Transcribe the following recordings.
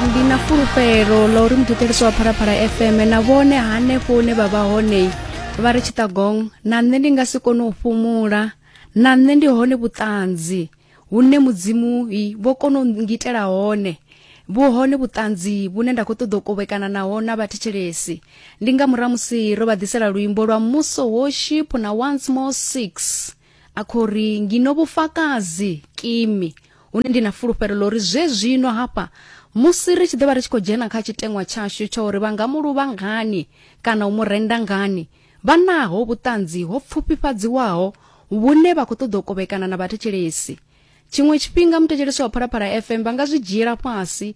ndi na fulufhelo ḽa uri muthetshelesi wa phalaphala fm na vhone hanefho hune vha vha hone vha ri tshitagong na nṋe ndi nga si kone u fhumula na nṋe ndi hone vhuṱanzi hune mudzimu vho kona u ngitela hone vhu hone vhuṱanzi vhune nda khou ṱoḓa u kovhekana naho na vhathetshelesi ndi nga murahu musi ro vha ḓisela luimbo lwa muso worship na once more six a khou ri ngino vhufakazi kimi hune ndi na fulufhelo ḽo ri zwe zwino hafha musi ri tshi ḓo vha ri tshi khou dzhena kha tshiteṅwa tshashu tsha uri vha nga mu luvha ngani kana u mu renda ngani vha naho vhuṱanzi ho pfufhifhadziwaho vhune vha khou ṱoḓa u kovhekana na vhathetshelesi tshiṅwe tshifhinga muthetshelesi wa phalaphala fm vha nga zwi dzhiela fhasi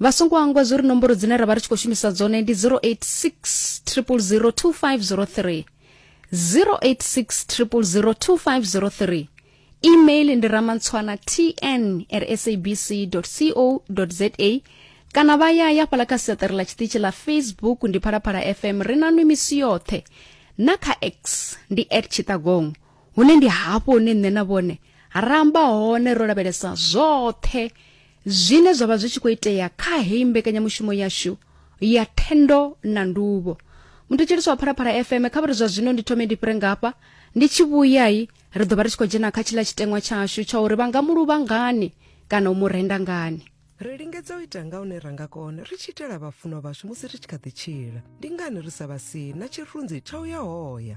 vha songo angwa zwo ri nomboro dzine ra vha ri tshi khou shumisa dzone ndi 086 0002503 086 email ndi ramantswana tn at sabc co za kana vha ya ya fhala kha siaṱari ḽa tshiṱitshi ḽa facebook ndi phalaphala fm ri na nwi misi yoṱhe na kha x ndi at tshiṱagong hune ndi hafho hune nṋe na vhone ra amba hone ro lavhelesa zwoṱhe zwine zwa vha zwi tshi khou itea kha heyi mbekanyamushumo yashu ya thendo na nduvho muthetshelisi wa phalaphala fm kha vhari zwa zwino ndi thome ndi fhire ngafha ndi tshi vhuyai ri ḓo vha ri tshi khou dzhena kha tshiḽa tshiteṅwa tshashu tsha uri vha nga mu luvha ngani kana u mu renda ngani ri lingedza u ita nga hune ra nga kona ri tshi itela vhafunwa vhashu musi ri tshi kha ḓi tshila ndi ngani ri sa vha si na tshirunzi tsha u ya hoya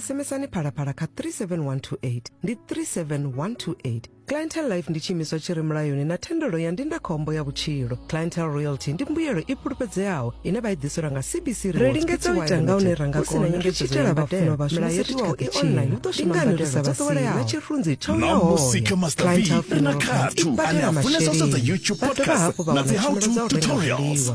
sms-ani phalaphala kha 37128 ndi 37128 clientel life ndi tshiimiswa tshi re mulayoni na thendelo ya ndindakhombo ya vhutshilo clientel royalty ndi mbuyelo i fhulufhedzeaho ine vha i ḓiselwa nga cbc ri lingedza u ita nga hune ra nga kona ri tshi itela vhafunwa vhashu musi ri tshi kha ḓi tshila ndi ngani ri sa vhasii na tshirunzi tsho na musika master v ri na khathu ane a funesa u sedza youtube podcast na dzi how to tutorials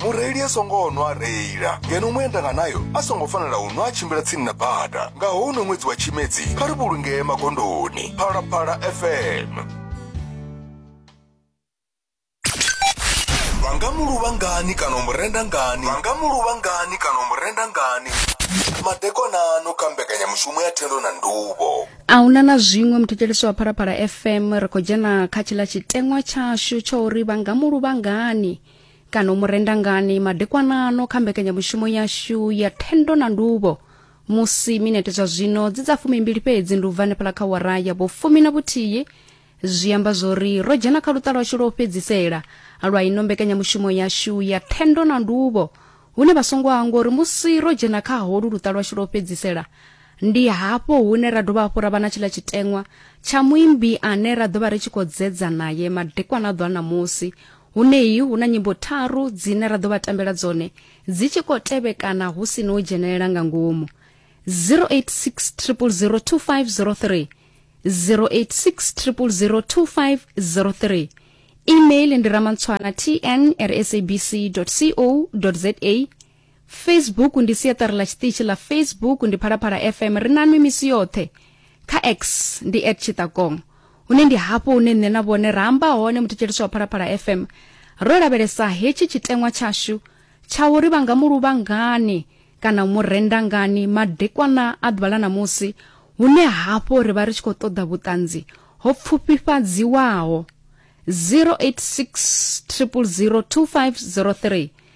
mureili a songo nwa a reila ngeno muendanganayo a songo fanela u nwa a tshimbila tsini na bada nga houno ṅwedzi wa tshimedzi kha ri vhulungee magondoni phalaphala fm vha nga muluvha ngani kana u murenda ngani vha nga muluvha ngani kana u murenda ngani madekonano kha mbekanyamushumo ya thendo na nduvho a huna na zwiṅwe muthetshelesi wa phalaphala fm ri khou dzhena kha tshiḽa tshiteṅwa tshashu tsha uri vha nga muluvha ngani kana u mu renda ngani madekwanano kha mbekanyamushumo yashu ya thendo na nduvho musi minete zwa zwino dzi dza fumimbili fhedzi ndi u bva hanefhala kha wara ya vhofumi na vhuthihi zwi amba zwori ro dzhena kha luṱa lwashu lwo fhedzisela lwa ino mbekanyamushumo yashu ya thendo na nduvho hune vha songo hangwa uri musi ro dzhena kha holu luṱa lwashu lwo fhedzisela ndi hafho hune ra dovha hafhu ra vha na tshiḽa tshiteṅwa tsha muimbi ane ra ḓo vha ri tshi khou dzedza naye madekwana a ḓo a ṋamusi Huneyi hu na nyimbo tharu dzine ra ḓo vha tambela dzone dzi tshi khou tevhekana hu si no dzhenelela nga ngomu 0860002503 0860002503 email ndi ramantswana tn@sabc.co.za facebook ndi siaṱari ḽa tshiṱitshi ḽa facebook ndi phalaphala fm ri nanwi misi yoṱhe kha x ndi at tshiṱakong hune ndi hafho hune nṋe na vhone ra amba hone muthetshelisi wa phalaphala fm ro lavhelesa hetshi tshiteṅwa tshashu tsha uri vha nga mu luvha ngani kana u mu renda ngani madekwana a ḓuvha ḽa ṋamusi hune hafho ri vha ri tshi khou ṱoḓa vhuṱanzi ho pfufhifhadziwaho 086 000 2503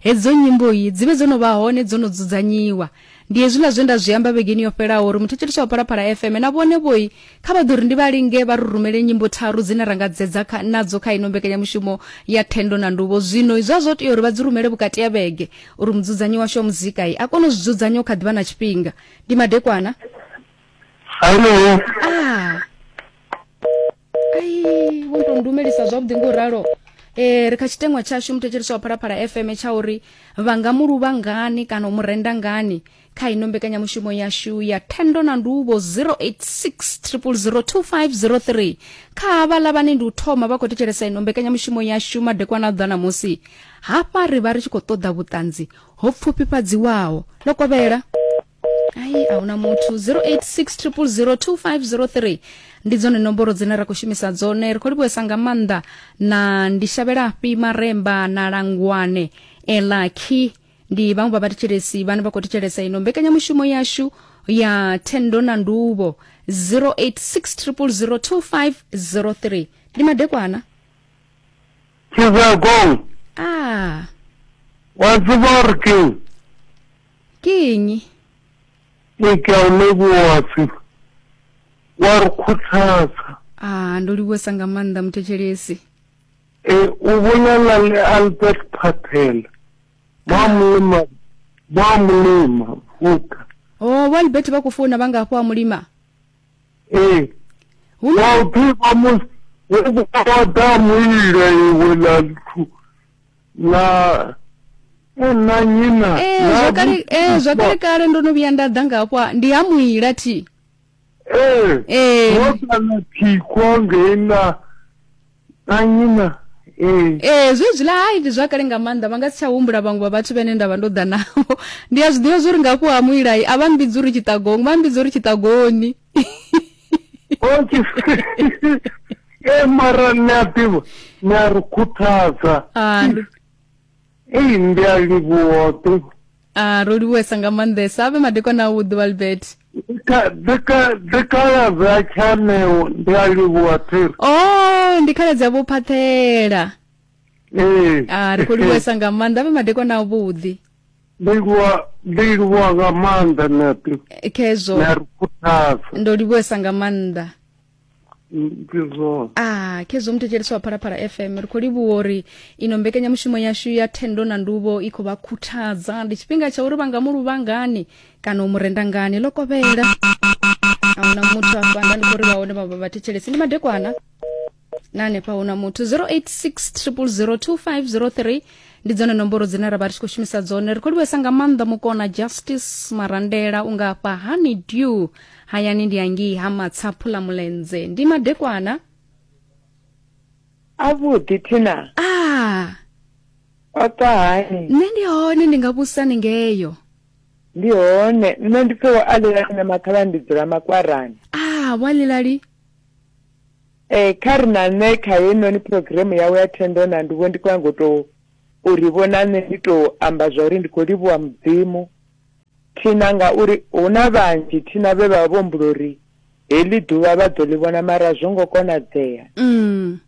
Hedzo nyimbo-i dzi vhe dzo no vha hone, dzo no dzudzanyiwa. Ndi hezwiḽa zwe nda zwi amba vhegeni yo fhelaho uri muthetshelesi tsha Phalaphala FM na vhone-vho-i kha vha ḓo ri ndi vha linge vha ri rumele nyimbo tharu dzine ra nga dzedza kha, nadzo kha ino mbekanyamushumo ya Thendo na Nduvho. Zwino zwa zwo tea uri vha dzi rumele vhukati ha vhege uri mudzudzanyi washu wa muzika-i a kone u zwi dzudzanya hu kha ḓi vha na tshifhinga. Ndi madekwana. Hallo. Ah. ai wo tou ndumelisa zwavhuḓi ngo ralo eh ri kha tshitengwa tshashu muthetshelisi wa phalaphala fm tsha uri vha nga mu luvha ngani kana u mu renda ngani kha ino mbekanyamushumo yashu ya thendo na ndubo 0860002503 kha havhala vhane ndi u thoma vha khou thetshelesa ino mbekanyamushumo yashu madekwana a ḓa namusi hafha ri vha ri tshi khou ṱoḓa vhuṱanzi ho pfufhifhadziwaho ḽo kovhela ai a huna muthu 0860002503 ndi dzone nomboro dzine ra khou shumisa dzone ri khou livhuesa nga maanḓa na ndi shavhela fhi maremba na langwane elaki ndi vhaṅwe vha vhathetshelesi vhane vha khou thetshelesa ino mbekanyamushumo yashu ya thendo na nduvho 0860002503 ndi madekwana Tshizagong, ah wa tshiborking, Ke eng? Ke ka u livhuwa pfi wa ri khuthadza. Ah, ndo livhuwesa nga maanḓa muthetshelesi. E, u vhulala ḽe Albert Patel, vha mulima, vha mulima, vuka. Oh, vho Albert vha khou founa vha nga hafho a mulima. E, Hu na- wa u ḓivha musi hu vha ḓa mulila iwe ḽa nthu na munna nnyi na ee na zwa kale ee eh, zwa kale kale ndo no vhuya nda ḓa nga hafho ndi ha muila thi ee ee eh. wo kana thikho ngei na na nnyi na ee eh. ee zwezwiḽa hai ndi zwa kale nga maanḓa vha nga si tsha humbula vhaṅwe vha vhathu vhene nda vha ndo ḓa navho ndi a zwi ḓivha zwo ri nga hafho ha muilai a vha mbidzi uri tshiṱagoni vha mbidzi uri tshiṱagoni e mara ni a ḓivha ni a ri khuthadza ah, ei ndi a livhuwa ḓivha ah, ro livhuwesa nga maanḓesa a vhe madekwana awu ḓuvha libert dzikhaladzi a tshaneo ndi a livhuwa thiri o oh, ndi khaladzi a vho phathela ee ah, ri khou livhuwesa nga maanḓa a vhe madekwana avhuḓi ndi livhuwa ndi livhuwa nga maanḓa nṋepe Eh, khezwo na ri khuthaza ndo livhuwesa nga maanḓa ndi zwone ah khezwo muthetshelesi wa phalaphala fm ri khou livhuwa uri ino mbekanyamushumo yashu ya thendo na nduvho i khou vha khuthadza ndi tshifhinga tsha uri vha nga mu luvha ngani kana u mu renda ngani ḽo kovhela ahuna muthu afha nda ndi khou ri vha hone vha- vha- vhathetshelesi ndi madekwana na hanefha hu na muthu 0860002503 ndi dzone nomboro dzine ra vha ri tshi khou shumisa dzone ri khou livhesa nga maanḓa mukona justice marandela unga afha honey dew hayani ndi angii ha matsaphu ḽa mulenze ndi madekwana avhuḓi thina ah o ṱwa hani nṋe ndi hone ndi nga vhusa ni ngeyo ndi hone nṋe ndi pfhe wo alela nṋe mathala ndi dzula makwarani ah walilali Eh, kha ri na nṋe kha heinoni phurogiremu yawe ya thendo na nduvho ndi khou nyanga u tou u ri vhona nṋe ndi tou amba zwa uri ndi khou livhuwa mudzimu thina ngauri hu na vhanzhi thina vhe vha vha vho mbulo uri heḽi ḓuvha vha ḓo ḽi vhona mara zwo ngo konadzea mm.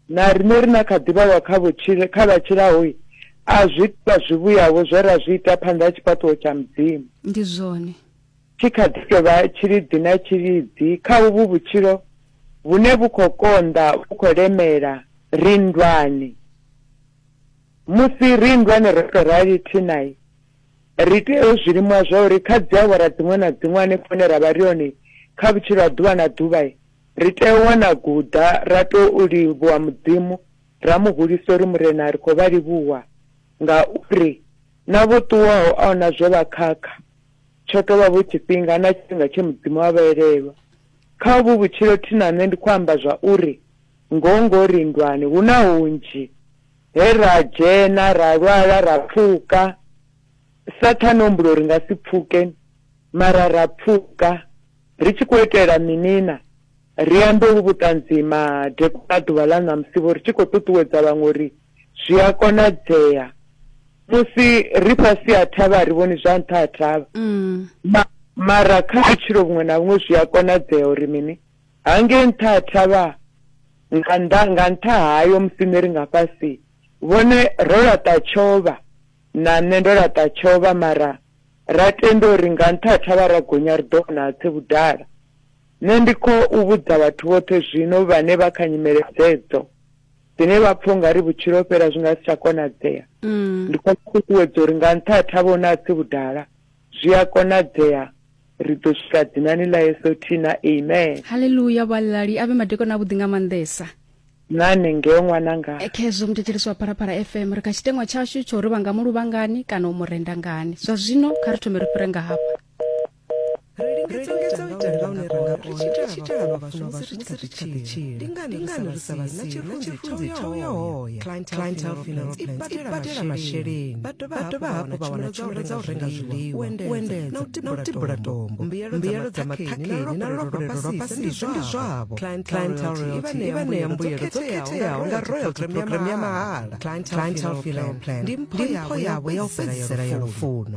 na riṋe ri na kha ḓivhawa kha vhutshile kha vha tshilahoi a zwi vha zwivhuyavho zwe ra zwi ita phanḓa ha tshifhaṱuwo tsha mudzimu ndi zwone tshi kha ḓi tou vha tshiliḓi na tshiliḓi kha uvhu vhutshilo vhune vhu khou konḓa vhu khou lemela ri nndwani. Musi ri nndwani ro tou rali thinai, ri tea u zwi limuha zwa uri kha dziawara dziṅwe na dziṅwe hanefho hune ra vha ri hone kha vhutshilo ha ḓuvha na ḓuvha, ri tea u wana guḓa ra tou livhuwa Mudzimu, ra mu hulisa uri, Murena, ri khou vha livhuwa ngauri na vho ṱuwaho a hu na zwe vha khakha, Tsho tou vha vho tshifhinga na tshifhinga tshe Mudzimu a vha elelwa. Kha uvhu vhutshilo thi na nṋe ndi khou amba zwa uri ngoho ngoho ri nndwani, hu na hunzhi he ra dzhena, ra lwala, ra pfuka. Sathane o humbula uri ri nga si pfuke, mara ra pfuka. Ri tshi khou itela mini na? Ri ambe uvhu vhuṱanzi madekwana a ḓuvha ḽa ṋamusi vho ri tshi khou ṱuṱuwedza vhaṅwe uri zwi a konadzea. Musi ri fhasi ha thavha a ri vhoni zwa nṱha ha thavha. Ma, mara kha vhutshilo vhuṅwe na vhuṅwe zwi a konadzea uri mini? Hangei nṱha ha thavha, nga nnḓa, nga nṱha hayo musi nṋe ri nga fhasi, vhone ro laṱa tshovha, na nṋe ndo laṱa tshovha, mara ra tenda uri nga nṱha ha thavha ra gonya ri ḓo vhona hatshe vhudala. Nṋe ndi khou vhudza vhathu vhoṱhe zwino vhane vha kha nyimele dzedzo, dzine vha pfa u nga ri vhutshilo ho fhela zwi nga si tsha konadzea, ndi khou vha ṱuṱuwedza uri nga nṱha ha thavha huna hatsi vhudala, zwi a konadzea, ri ḓo swika dzinani ḽa Yesu Thina. Amen. Haleluya! Vhuaḽali a vhe madekwana avhuḓi nga maanḓesa. Na hanengeo ṅwananga. Khezwo muthetshelesi wa Phalaphala FM, ri kha tshiteṅwa tshashu tsha uri vha nga mu luvha ngani kana u mu renda ngani. Zwa zwino kha ri thome ri fhire nga hafha. ibadela masheleni vha dovha hafhu vha wana tshumelo dza u renga zwiḽiwa uendedza na u tibula tombo mbuyelo dza maṱhakheni na lolopolelo lwa fhasi ndi zwavho i vha ṋea mbuyelo dzo khetheaho nga royalty program ya mahala ndi mpho yavho ya u fhedzisela ya lufuno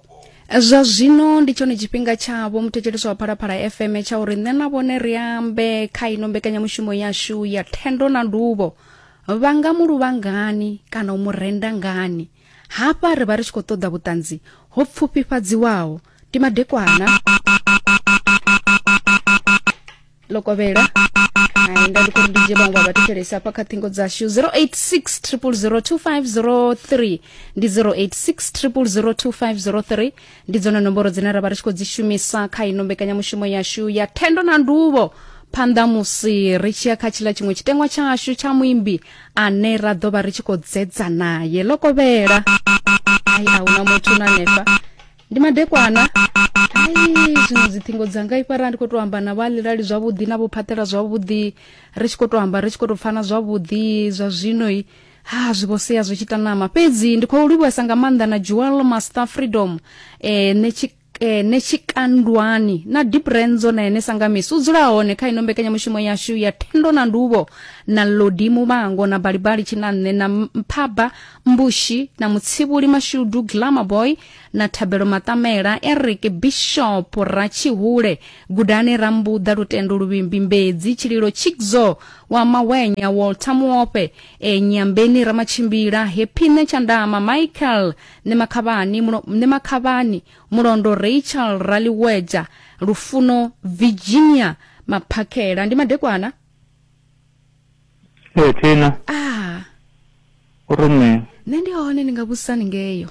zwa zwino ndi tshone tshifhinga tshavho muthetshelesi wa phalaphala fm tsha uri nṋe na vhone ri ambe kha ino mbekanyamushumo yashu ya thendo na nduvho vha nga mu luvha ngani kana u mu renda ngani hafha ri vha ri tshi khou ṱoḓa vhuṱanzi ho pfufhifhadziwaho ndi madekwana ḽo kovhela hai nda ndi khou ndi dzhie vhaṅwe vha vhathetshelesi hafha kha ṱhingo dzashu 086 0002503 ndi 086 0002503 ndi dzone nomboro dzine ra vha ri tshi khou dzi shumisa kha ino mbekanyamushumo yashu ya thendo na nduvho phanḓa musi ri tshi ya kha tshiḽa tshiṅwe tshitengwa tshashu tsha muimbi ane ra ḓo vha ri tshi khou dzedza naye ḽo kovhela ai a huna muthu na hanefha ndi madekwana ai zwino dziṱhingo dzanga i fara ndi khou tou amba na vhalilali zwavhuḓi na vhophaṱela zwavhuḓi ri tshi khou tou amba ri tshi khou tou pfana zwavhuḓi zwa zwinoi ha zwi vho sea zwi tshi tanama fhedzi ndi khou livhuwesa nga maanḓa na jewel master freedom eh, ne tshi eh, ne tshikandwani na deep renzo na ene sangamisi u dzula hone kha ino mbekanyamushumo yashu ya thendo na nduvho na lodi muvhango na balibali tshinanne na mphaba mbushi na mutsivhuli mashudu glamour boy na Thabelo Matamela, Eric Bishop Ratshihule, Gudani Rambuḓa, Lutendo Luvimbi Mbedzi, Tshililo Chikzo wa Mawenya, Walter Muope, e Nyambeni Ramatshimbila, Hepine Tshandama, Michael Nemakhavhani, Mulo- Nemakhavhani, Mulondo Rachel Raliweja, Lufuno Virginia Maphakhela. Ndi madekwana? ee thina Ah, u ri mini nṋe ndi hone ndi nga vhusani ngeyo.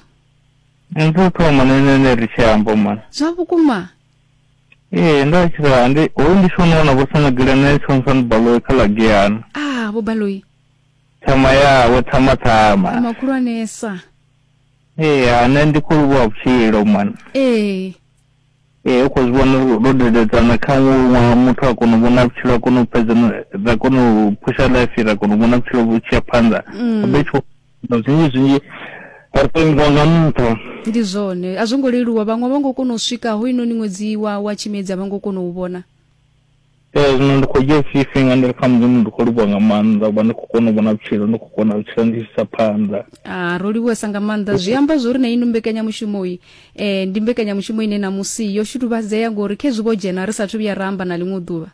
Ndu thoma na ene ne ri tshi amba mwana. Zwa vhukuma. Ee nda tshi ra ndi ho ndi shona wana vho sana gila na tshi wana baloyi kha la giyana. Ah vho baloyi. Thama ya wo thama thama. Thama khulwanesa. Ee ha nṋe ndi khou livhuwa vhutshilo mwana. Ee. Ee u kho zwi vhona uri ro dededzana kha ṅwaha muthu a kona u vhona vhutshilo a kona u fhedza ra kona u phusha life ra kona u vhona vhutshilo vhu tshi ya phanḓa mm. be tsho zwinzhi zwinzhi ri tou ingiwa nga nṱha ndi zwone a zwo ngo leluwa vhaṅwe vha ngo kona u swika ho inoni ṅwedzi wa wa tshimedzi a vha ngo kona u vhona Ee zwino ndi khou dzhia tshifhinga ndi ri kha mudzimu ndi khou livhuwa nga maanḓa uvha ndi khou kona u vhona vhutshilo ndi khou kona vhutshilo ndi tshisa phanḓa ah, ro livhuwesa nga maanḓa zwi amba zwo ri na ino mbekanyamushumo i eh, ndi mbekanyamushumo ine na musi yo shutuvhadzea ngori khezwi vho dzhena ri sathu vhuya ra amba na ḽiṅwe ḓuvha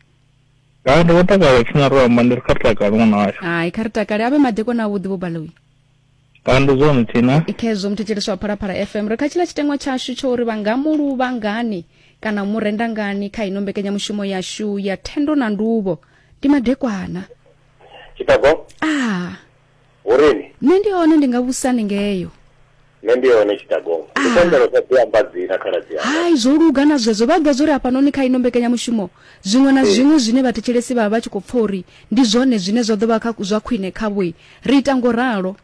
ha ndi vho takala tshina ro amba ndi ri kha ri takale ṅwana washu hai kha ri takale a vhe madekwana avhuḓi vho baloyi kandu zwo mthina khezwo muthetshelesi wa phalaphala fm ri kha tshila tshiteṅwa tshashu tsho uri vha nga mu luvha ngani kana mu renda ngani kha ino mbekanyamushumo yashu ya thendo na nduvho ndi madekwana tshitago ah urini nṋe ndi hone ndi nga vhusani ngeyo nṋe ndi hone tshitago ndi Ah. pembelo sa ḓi amba dzina khaladzi yanga hai zwo luga na zwezwo vha ḓivha zwori hafhanoni kha ino mbekanyamushumo zwiṅwe na Ee. zwiṅwe zwine vhathetshelesi vha vha vha tshi khou pfa uri ndi zwone zwine zwa ḓo vha kha- zwa khwine khavhoi Ri ita ngo ralo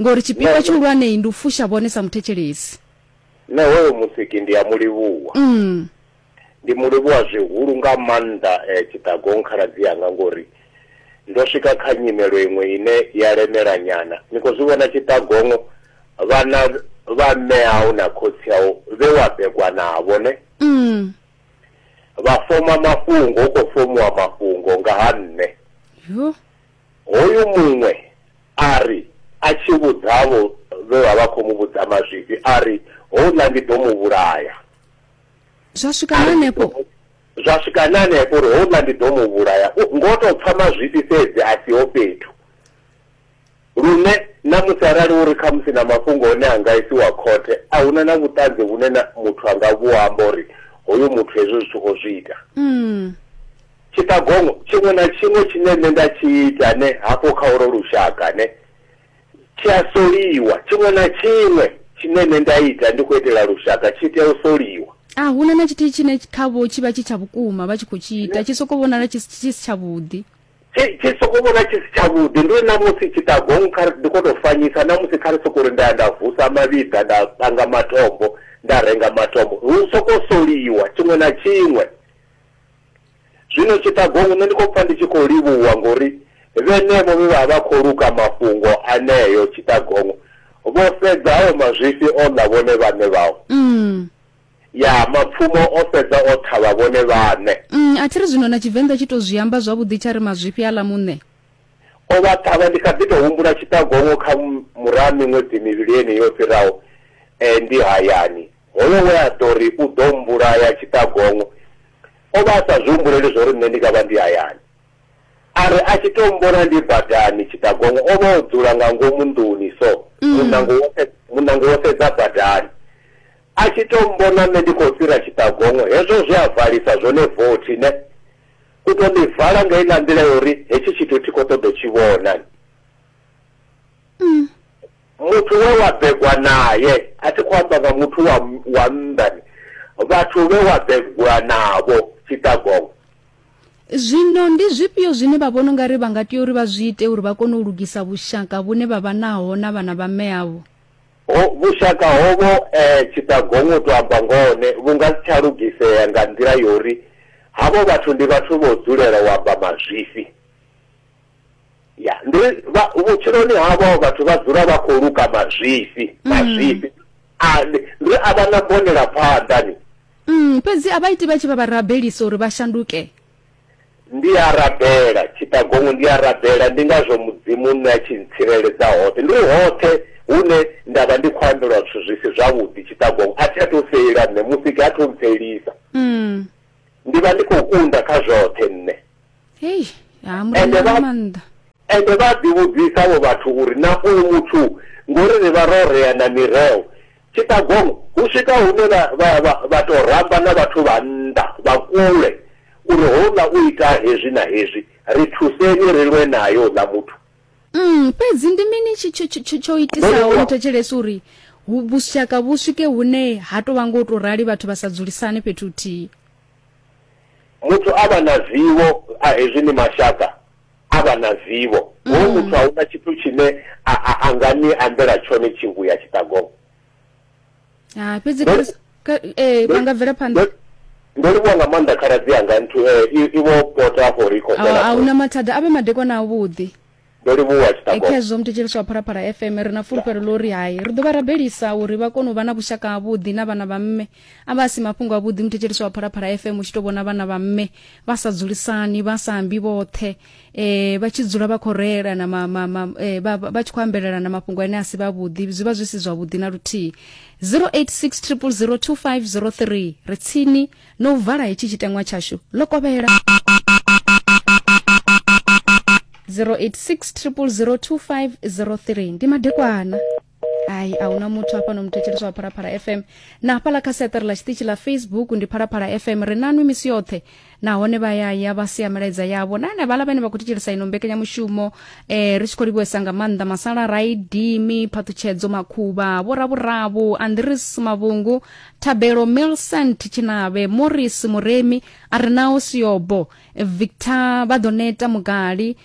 ngori tshipikwa tshihulwanei ndi u fusha vhone sa muthetshelesi. Nṋe hoyo musiki ndi a mu livhuwa. Mm. Ndi mu livhuwa zwihulu nga maanḓa eh, Tshiṱagong khaladzi yanga ngori ndo swika kha nyimelo iṅwe ine ya lemela nyana. Ni khou zwi vhona Tshiṱagongo vhana vha mme au na khotsi au vhe wa begwa navho ne? Mm. Vha foma mafhungo, hu khou fomiwa mafhungo nga ha nṋe. Yo. Hoyu muṅwe a ri a tshi vhudza avho vhe vha vha khou mu vhudza mazwifhi a ri, Houḽa ndi ḓo mu vhulaya. Zwa swika na hanefho? Zwa swika na hanefho uri houḽa ndi ḓo mu vhulaya. Ngo tou pfa mazwifhi fhedzi a siho fhethu. Lune na musi arali hu ri khamusi na mafhungo one a nga isiwa khothe, a hu na na vhuṱanzi vhune na muthu a nga vhu amba uri hoyu muthu hezwi zwithu o zwi ita. Tshiṱagongo tshiṅwe na tshiṅwe tshine nṋe nda tshi ita ne hafho kha olwo lushaka ne tshi a soliwa. Tshiṅwe na tshiṅwe tshine nṋe nda ita ndi khou itela lushaka tshi tea u soliwa. A hu na na tshithihi tshine khavho tshi vha tshi tsha vhukuma vha tshi khou tshi ita, tshi sokou vhonala tshi si tshavhuḓi. Tshi tshi sokou vhona tshi si tshavhuḓi. Ndi uri na musi tshiṱagongo kha ri ndi khou tou fanyisa, na musi kha ri sokou ri nda ya nda vusa mavhiḓa, nda panga matombo, nda renga matombo, hu sokou soliwa tshiṅwe na tshiṅwe. Zwino tshiṱagongo nṋe ndi khou pfa ndi tshi khou livhuwa ngori vhenevho vhe vha vha khou luka mafhungo aneo tshiṱagongo vho fhedza hayo mazwifhi o ḽa vhone vhaṋe vhao. Mm. Ya mapfumo o fhedza o ṱhavha vhone vhaṋe. Mm, a thi ri zwino na Tshivenḓa tshi tou zwi amba zwavhuḓi tsha ri mazwifhi a ḽa muṋe. O vha ṱhavha ndi kha ḓi tou humbula tshiṱagongo kha muraha miṅwedzi mivhili yeneyi yo fhiraho eh, ndi hayani. Hoyo we a ḓo ri u ḓo mmbulaya tshiṱagongo o vha a sa zwi humbuleli zwa uri nṋe ndi nga vha ndi hayani. A ri a tshi tou mmbona ndi badani, tshiṱagongo o vha o dzula nga ngomu nḓuni so, muṋango wo muṋango wo sedza badani. A tshi tou mmbona nṋe ndi khou fhira tshiṱagongo, hezwo zwe a valisa zwone vothi ne, u tou ḽi vala nga heiḽa nḓila ya uri hetshi tshithu thi khou ṱoḓa u tshi vhona. muthu we wa begwa naye a thi khou amba nga muthu wa wa nnḓani vhathu vhe wa begwa navho tshitagongwe zwino ndi zwifhio zwine vha vhona ungari vha nga tea uri vha zwi ite uri vha kone u lugisa vhushaka vhune vha vha naho na vhana vha mme avho vhushaka hovho um eh, tshitagongwe u to amba ngone vhu nga si tsha lugisea nga nḓila yo uri havho vhathu ndi vhathu vho dzulela u amba mazwifhi ya ndi vhutshiloni havho vhathu vha dzula vha khou luka mazwifhi mm. mazwifhi ane ndi a vha na bonela phanḓa ni mm, fhedzi a vha iti vha tshi vha vha rabelisa uri vha shanduke ndi a rabela tshiṱagongo ndi a rabela ndi ngazwo mudzimu nṋe a tshi ntsireledza hoṱhe ndi hoṱhe hune nda vha ndi khou ambelwa zwithu zwi si zwavhuḓi tshiṱagongo a thi a to feila nṋe musiki a tho mpfelisa mm. ndi vha ndi khou kunda kha zwoṱhe nṋe hei ha murena nga maanḓa ende vha ḓivhudzisa vho vhathu uri na uyu muthu ngori ri vha ro rea na mireo tshitagong hu swika hune vha tou ramba na vhathu vha nnḓa vha kule uri houḽa u ita hezwi na hezwi ri thuseni ri lwe naye uḽa muthu mm, fhedzi ndi mini tsho itisaho ni thetshelesa uri vhushaka vhu swike hune ha tou vha ngo tou rali vhathu vha sa dzulisane fhethu huthihi muthu a vha na zivho a hezwi ni mashaka a vha na zivho mm. hoyu muthu a huna tshithu tshine a nga ni ambela tshone tshingu ya tshiṱagongo ha fhedzi Ndo- Chris- ka- eh vha nga bvela phanḓa Ndo- ndo livhuwa nga maanḓa khaladzi yanga nthu eh, i- ivo pota afho ri khou a fhela a huna mathada a vhe madekwana a vhuḓi ndo livhuwa Eh, tshiṱago khezwo muthetsheliso wa phalaphala fm ri na fulufhelo ḽo ri hai ri ḓo vha rabelisa uri vha kone u vha na vhushaka havhuḓi na vhana vha mme a vha si mafhungo avhuḓi muthetsheliso wa phalaphala fm u tshi tou vhona vhana vha mme vha sa dzulisani vha sa ambi vhoṱhe eh vha tshi dzula vha khou reela na ma, ma, ma, eh, vha vha tshi khou ambelelana mafhungo ane a si vhavhuḓi zwi vha zwi si zwavhuḓi na luthihi 0860002503 ri tsini no u vala hetshi tshiteṅwa tshashu ḽo kovhela 0860002503 ndi madekwana ai a huna muthu hafha no muthetsheleswa wa phalaphala fm na hafhaḽa kha seṱere ḽa tshiṱitshi ḽa facebook ndi phalaphala fm ri nanwi misi yoṱhe nahone vha yaya vha sia milaedza yavho na ane vhaḽa vhane vha khou thetshelesa ino mbekanyamushumo eh, ri tshi khou livhuwesa nga maanḓa masala raidimi phaṱhutshedzo makhuvha vhoravhuravu andris mavhungu thabelo milcent tshinavhe morris muremi a re nao siobo victor vha ḓo neta mugali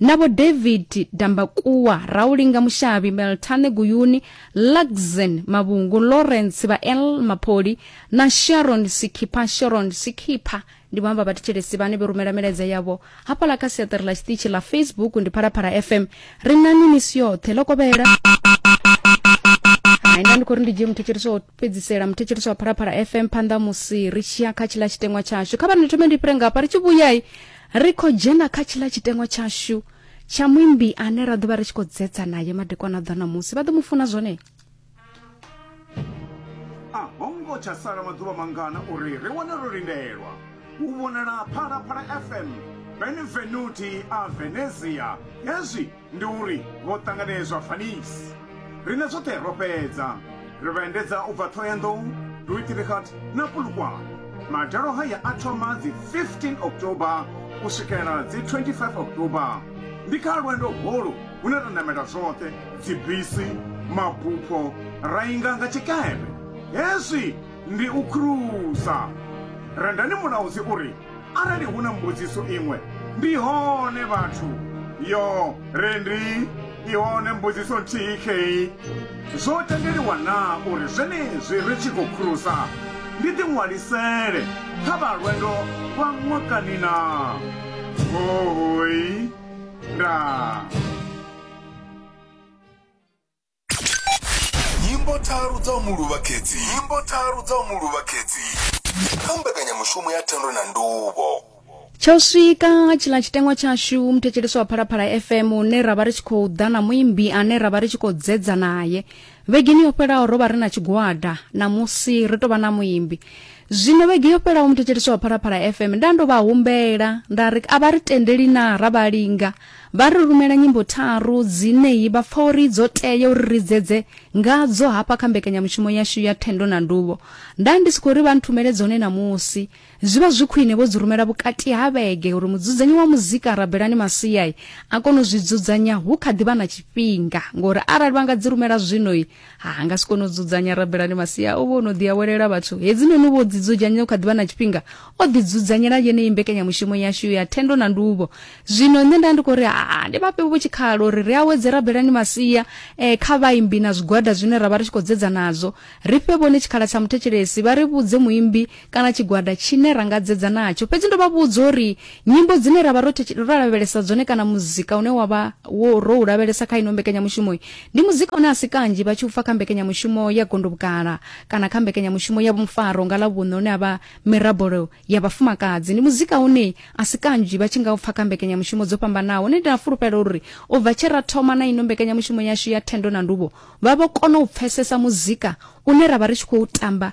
na vho david dambakuwa raulinga mushavhi meltane guyuni luxen mavhungu lawrence vha l mapoli na sharon sikhipha sharon sikhipha ndi vhamba vhathetshelesi vhane vhe rumela milaedza yavho hafhaḽa kha siaṱari ḽa tshiṱitshi ḽa facebook ndi phalaphala fm ri nani misi yoṱhe ḽo kovhela haina ndi khou ri ndi dzhie muthetshelesi wa fhedzisela muthetshelesi wa phalaphala fm phanḓa musi ri tshiya kha tshila tshiteṅwa tshashu kha vha ni thome ndi fhire ngafha ri tshi vhuyai ri khou dzhena kha tshiḽa tshitengo tshashu tsha muimbi ane ra ḓo vha ri tshi khou dzetsa naye madekwana ḓa na musi vha ḓo mu funa zwone a ho ngo tsha sala maḓuvha mangana uri ri wane ro lindelwa u vhonala phalaphala fm benvenuti a venezia hezwi Ndi uri vho ṱanganedzwa Vaniss. Riṋe zwoṱhe ro fhedza. Ri vha endedza u bva Thohoyandou, Dieutrichet na Polokwane. Madalo haya a thoma dzi 15 October u swikela dzi 25 October. Ndi kha lwendo holu hune ra namela zwoṱhe, dzibisi, mabupho, ra inga nga tshikepe. Hezwi ndi u khurusa. Rendani Mulaudzi u ri, Arali hu na mbudziso iṅwe, ndi hone vhathu. Yo, re ndi i hone mbudziso nthihi khei. Zwo tendeliwa na uri zwenezwi ri tshi khou khurusa ndi ḓi ṅwalisele kha vha lwendo lwa ṅwakani na? Hohoi, ndaa. nyimbo tharu dza u mu luvha khedzi nyimbo tharu dza u mu luvha khedzi kha mbekanyamushumo ya thendo na nduvho tsha u swika tshiḽa tshiteṅwa tshashu muthetshelesi wa phalaphala fm une ra vha ri tshi khou ḓa na muimbi ane ra vha ri tshi khou dzedza naye vhegeni yo fhelaho ro vha ri na tshigwada namusi ri tou vha na muimbi zwino vhege yo fhelaho muthetshelesi wa phalaphala fm nda ndo vha humbela nda ri a vha ri tendeli na ra vha linga Vha ri rumela nyimbo tharu dzine vha pfa uri dzo tea uri ri dzedze ngadzo hafha kha mbekanyamushumo yashu ya Thendo na Nduvho. Nda ndi si khou ri vha nthumele dzone ṋamusi, zwi vha zwi khwine vho dzi rumela vhukati ha vhege uri mudzudzanyi wa muzika Rabelani Masia a kone u zwi dzudzanya hu kha ḓi vha na tshifhinga, ngori arali vha nga dzi rumela zwino, ha nga si kone u dzudzanya rabelani masia o vha o no ḓiawelela vhathu hedzinoni u vho ḓidzudzanya u kha ḓivha na tshifhinga o ḓidzudzanyela yeneyi mbekanyamushumo yashu ya thendo na nduvho zwino nṋe nda ndi khou ri haa ndi vhafhe vho tshikhala uri ri awedze rabelani masia um kha vhaimbi na zwigwada zwine ra vha ri tshi khou dzedza nazwo ri fhe vhone tshikhala tsha muthetshelesi vha ri vhudze muimbi kana tshigwada tshine ra nga dzedza natsho fhedzi ndo vha vhudza uri nyimbo dzine ra vha ro lavhelesa dzone kana muzika une wa vha wo ro u lavhelesa kha ino mbekanyamushumo ndi muzika une a si kanzhi vha tshi u fa kha mbekanyamushumo ya gondobukala kana kha mbekanyamushumo ya vhumfaro nga ḽa vhuṋe une a vha mirabolo ya vhafumakadzi ndi muzika une a si kanzhi vha tshi nga u pfa kha mbekanyamushumo dzo fhambanaho ne ndi na fulufhelo uri u bva tshe ra thoma na ino mbekanyamushumo yashu ya thendo na nduvho vha vho kona u pfesesa muzika une ra vha ri tshi khou tamba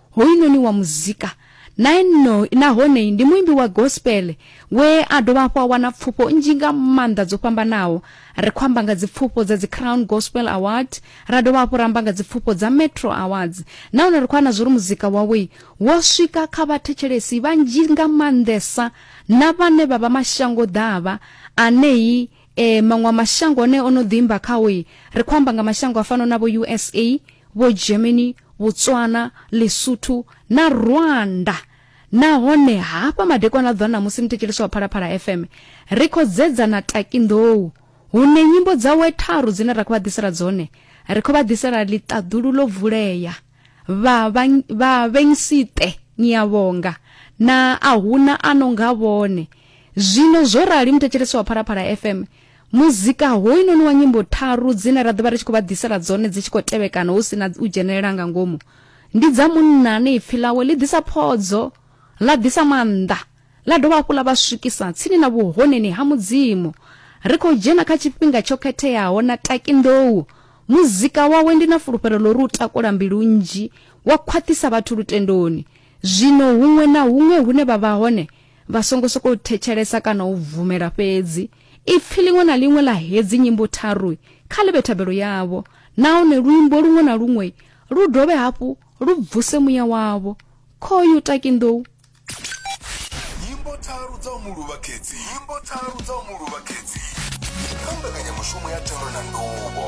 Hoyunoni wa muzika nae no nahone ndi muimbi wa gospel we a dovha hafhu a wana pfufho nnzhi nga maanḓa dzo fhambanaho ri khou amba nga dzipfufho dza dzi crown gospel award ra dovha hafhu ra amba nga dzipfufho dza metro awards nahone ri khou ana zwo ri muzika wawe wo swika kha vhathetshelesi vhanzhi nga maanḓesa na vhane vha vha mashango ḓavha anei E, maṅwe mashango ane o no ḓimba khao ri khou amba nga mashango a fano na vho usa vho germany botswana lesotho na rwanda nahone hafha madekwana ḓwa namusi ni thetshelesa wa phalaphala fm ri khou dzedza na takinḓou hune nyimbo dzawe tharu dzine ra khou vha ḓisela dzone ri khou vha ḓisela ḽiṱaḓulu ḽo vulea vha vha vhengsite ni a vhonga na a huna a no nga vhone zwino zwo rali muthetshelesi wa phalaphala fm muzika hoyunoni wa nyimbo tharu dzine ra ḓovha ri tshi khou vha ḓisela dzone dzi tshi khou tevhekana hu si na u dzhenelela nga ngomu ndi dza munna ane ipfi ḽawe ḽi ḓisa phodzo ḽa ḓisa maanḓa ḽa dovha hafhu ḽa vha swikisa tsini na vhuhoneni ha Mudzimu. Ri khou dzhena kha tshifhinga tsho khetheaho na Taki Ndou. Muzika wawe ndi na fulufhelo ḽo ri u takula mbilu nnzhi wa khwaṱhisa vhathu lutendoni. Zwino huṅwe na huṅwe hune vha vha hone, vha songo sokou thetshelesa kana u bvumela fhedzi. Ipfi ḽiṅwe na ḽiṅwe ḽa hedzi nyimbo tharu kha ḽi vhe thabelo yavho, nahone luimbo luṅwe na luṅwe lu dovhe hafhu lu bvuse muya wavho. Khoyu Taki Ndou. nyimbo tharu dza u mu luvha khedzi nyimbo tharu dza u mu luvha khedzi kha mbekanyamushumo ya thero na nduvho